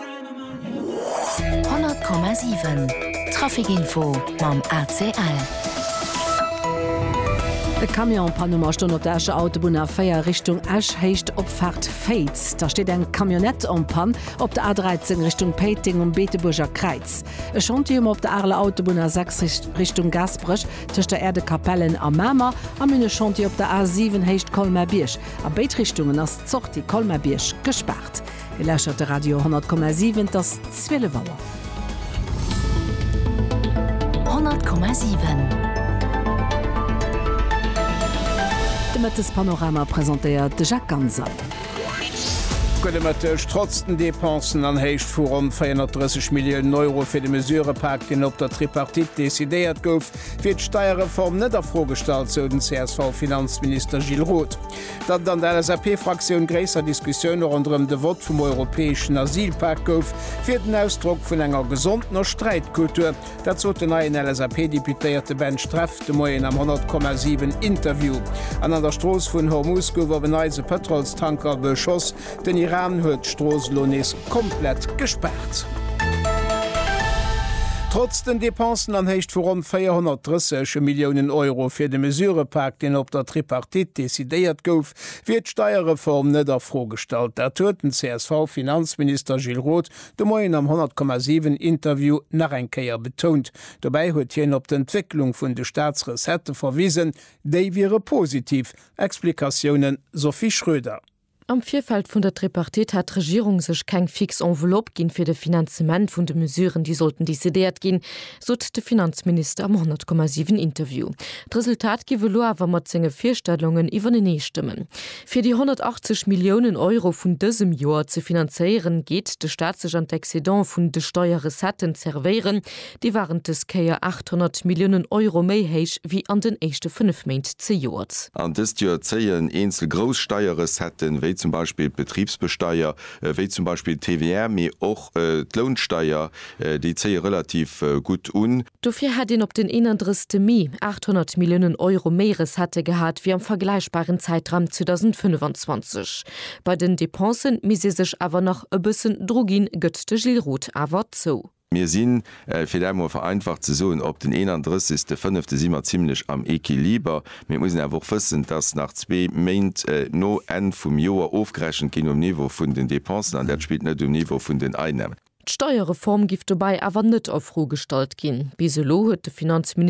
100,7 Trafic info mam ACL. E Camion Panuma stoen op der Escher Autobunn A4 Richtung Esch, Héicht Opfaart Féiz. Da steet eng Camionnette en Panne op der A13 Richtung Péiteng um Beetebuerger Kräiz. E Chantier um op der Areler Autobunn A6 Richtung Gaasperech tëscht der Äerdekapellen a Mamer. Am hunn e Chantier op der A7 Héicht Colmer-Bierg. A béid Richtungen ass d'Sortie Colmer-Bierg gespaart. Dir lauschtert de Radio 10,7. Et ass 12 Auer. 10,7 De Mëttespanorama presentéiert de Jacques Ganser. Gudde Mëtteg. Trotz den Depensen an Héicht vu ronn 430 Milliounen Euro fir de Mesurepak, deen op der Tripartite decidéiert gouf, wier d'Steierreform net a Fro gestallt, sou den CSV-Finanzminister Gilles Roth. Datt et an der LSAP-Fraktioun gréisser Diskussioune ronderëm de Vott vum europäeschen Asylpak gouf, wier den Ausdrock vun enger gesondener Sträitkultur. Dat sot den neien LSAP-Deputéierte Ben Streff de Moien am 100,7 Interview. An an der Strooss vun Hormus gouf op en Neits e Pëtrolstanker beschoss. Den Iran huet d'Strooss elo nees komplett gespaart. Trotz den Depensen an Héicht vu ronn 430 Milliounen Euro fir de Mesurëpak, deen op der Tripartite decidéiert gouf, wier d'Steierreform net a Fro gestallt. Dat huet den CSV-Finanzminister Gilles Roth de Moien am 100,7 Interview nach eng Kéier betount. Dobäi huet hien op d'Entwécklung vun de Staatsrecettë verwisen, déi wiere positiv. Explikatiounen, Sophie Schröder. Am Virfeld vun der Tripartite hat d'Regierung sech keng fix Enveloppe ginn, fir de Finanzement vun de Mesuren, déi sollten decidéiert ginn, sot de Finanzminister am 100,7 Interview. D'Resultat giff elo awer mat senge Virstellungen iwwereneestëmmen. Fir déi 180 Milliounen Euro vun dësem Joer ze finanzéieren, geet de Staat sech an d'Excedente vun de Steierrecetten zerwéieren, Déi waren dës Kéier 800 Milliounen Euro méi héich wéi an den éischte fënnef Méint zejoert. An dëst Joer zéien eenzel grouss Steierrecetten, wéi zum Beispill d'Betribsbesteier, wéi zum Beispill d'TVR, mee och d'Lounsteier, déi zéie relativ gutt un. Dofir hätt een op den 31 Mee 800 Milliounen Euro méi Recettë gehat wéi am vergläichbaren Zäitraum 2025. Bei den Depensen misst ee sech awer nach e bëssen dru ginn, gëtt de Gilles Roth awer zou. Mir sinn, fir dat emol vereinfacht ze soen, op den 31. Fënnefte si mer zimlech am Equiliber. Mee et muss een awer och wëssen, dass nach zwee Méint no Enn vum Joer ofgerechent ginn um Niveau vun den Dépensen, an dat spillt net um Niveau vun den Einnahmen. D'Steierreform giff dobäi awer net a Fro gestallt ginn. Bis elo huet de Finanzministère